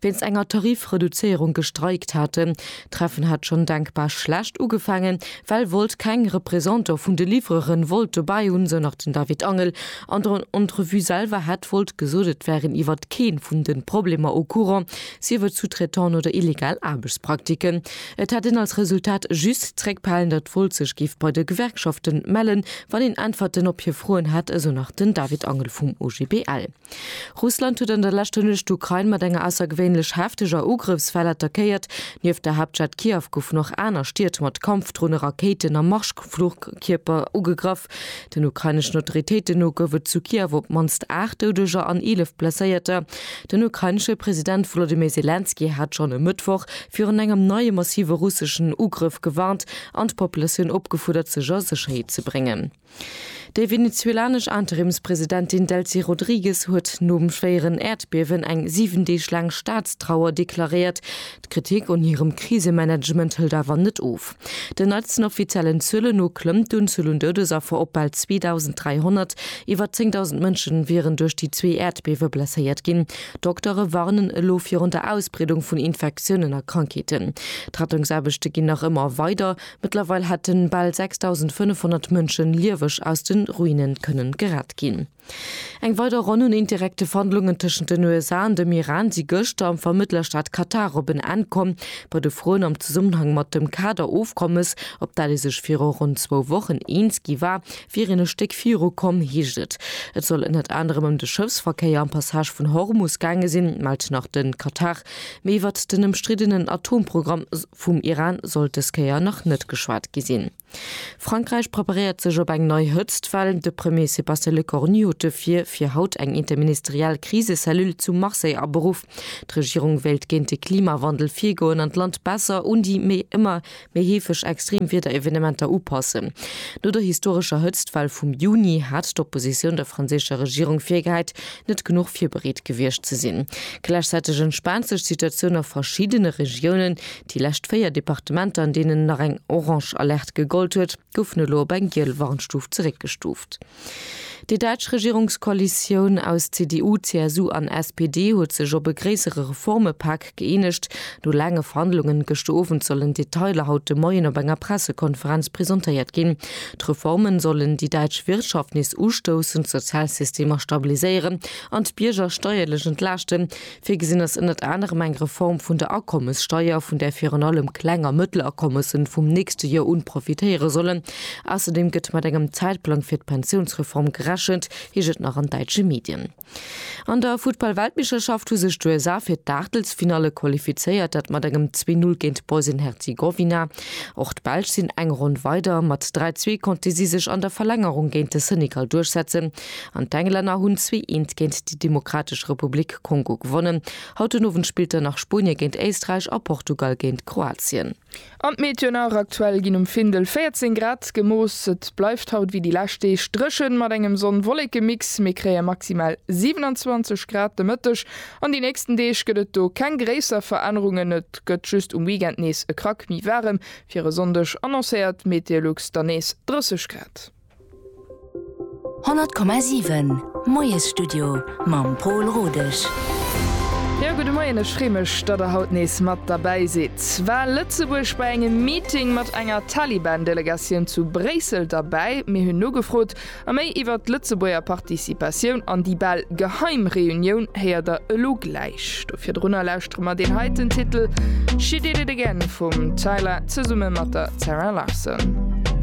wéinst enger Tarifreduzéierung gestreikt haten. D'Treffen hat schonn denkbar schlecht ugefaangen, well Volt keng Representant vun de Livreuren wollt dobäi hunn, sou nach den David Angel. An der Entrevue selwer hätt Volt gesot, et wären iwwert kee vun de Problemer au courant, sief et Sous-traitance oder illegal Aarbechtspraktiken. Et hätt een als Resultat just zréckbehalen, datt Volt sech géif bei de Gewerkschaften mellen, wann een Äntwerten op hir Froen hätt, esou nach den David Angel vum OGBL. Russland huet an der leschter Nuecht d'Ukrain mat enger aussergewéinlech hefteger Ugrëffswell attackéiert. Nieft der Haaptstad Kiew goufen och aner Stied mat Kampfdrone, Rakéiten a Marschflugkierper ugegraff. Den ukraineschen Autoritéiten no gouf et zu Kiew op d'mannst 8 Doudeger an 11 Blesséierter. Den ukrainesche President Wolodymyr Selenskyj hat schonn e Mëttwoch virun engem neie massive russeschen Ugrëff gewarnt an d'Populatioun opgefuerdert, sech a Sécherheet ze bréngen. Déi venezuelanesch Interimspresidentin Delcy Rodrigues huet nom schwéieren Äerdbiewen eng 7 Deeg laang Staatstrauer deklaréiert. D'Kritik un hirem Krisemanagement hëlt awer net of. Den neitsten offiziellen Zuelen no klëmmt d'Unzuel un Doudesaffer op bal 2.300. Iwwer 10.000 Mënsche wieren duerch déi zwee Äerdbiewe blesséiert ginn. Doktere warnen elo virun der Ausbreedung vun Infektiounen a Krankheeten. D'Rettungsaarbechte ginn nach ëmmer weider. Mëttlerweil hätten bal 6.500 Mënschen lieweg aus den Ruinen kënnen gerett ginn. Eng weider Ronn un indirekte Verhandlungen tëschent den USA an dem Iran si gëschter am Vermëttlerstaat Katar op en Enn komm. Bei de Froen am Zesummenhang mat dem Kader-Ofkommes, op dat ee sech viru ronn zwou Wochen eens gi war, wier een e Stéck viru komm, heescht et. Et soll ënnert anerem ëm de Schëffsverkéier am Passage vun Hormus gaange sinn, mellt nach de Katar. Méi iwwert den ëmstriddenen Atomprogramm. Vum Iran sollt dës Kéier nach net geschwat gi sinn. Frankräich preparéiert sech op eng nei Hëtztwell. De Premier Sébastien Lecornu huet dofir fir haut eng interministeriell Krisecellule zu Marseille aberuff. D'Regierung wéilt géint de Klimawandel virgoen an d'Land besser un déi méi ëmmer méi heefeg extrem Wiederevenementer upassen. No der historescher Hëtztwell vum Juni hat d'Oppositioun der franséischer Regierung virgehäit, net genuch virbereet gewiescht ze sinn. Gläichzäiteg entspaant sech d'Situatioun a verschiddene Regiounen. Déi lescht véier Departementer, an deenen nach eng orange Alerte gegollt huet, goufen elo op eng giel Warnstuf zeréckgestuuft. Déi däitsch Regierungskoalitioun aus CDU, CSU an SPD huet sech op e gréissere Reformepak Gëeenegt. No laange Verhandlungen gëschter Owend sollen d'Detailer haut de Moien op enger Pressekonferenz presentéiert ginn. D'Reformen sollen déi däitsch Wirtschaft nees ustoussen, d'Sozialsystemer stabiliséieren an d'Bierger steierlech entlaaschten. Virgesinn ass ënnert anerem eng Reform vun der Akommessteier, vun där virun allem Kleng a Mëttelakommessen vum nächste Joer un profitéiere sollen. Ausserdeem gëtt mat engem Zäitplang fir d'Pensiounsreform gerechent, heescht et nach an däitsche Medien. An der Futtball-Weltmeeschterschaft hu sech d'USA fir d'Aachtelsfinalle qualifizéiert, dat mat engem 2 Null géint Bosnien-Herzegowina. Och d'Belsch sinn eng Ronn weider. Mat 3 Zwee konnte si sech an der Verlängerung géint de Senegal duerchsetzen an d'Englänner hunn zwee eent géint déi Demokratesch Republik Kongo gewonnen. Haut den Owend spillt dann nach Spuenie géint Éisträich a Portugal géint Kroatien. An d'Meteo nach, Aktuell ginn um Findel 14 Grad gemooss. Et bleift haut wéi déi lescht Deeg dréchen, mat engem Sonn-Wolleke-Mix. Mir kréie maximal 27 Grad de Mëtteg. An déi nächsten Deeg gëtt et do keng gréisser Verännerungen, et gëtt just um Weekend nees e Krack méi waarem. Fir e Sonndeg annoncéiert Meteolux dann nees 30 Grad. 100,7 Moiesstudio mam Pol Rodesch. Jo, gudde Moien, ech free mech, datt der haut nees mat derbäi sidd. War Lëtzebuerg bei engem Meeting mat enger Taliban-Delegatioun zu Bréissel derbäi. Mir hunn nogefrot a méi iwwert d'Lëtzebuerger Participatioun an déi bal geheim Reunioun héiert der elo gläich. Do virdrunner lauschtere mer deen heiten Titel She Did It Again vum Tyla zesumme mat der Zara Larsson.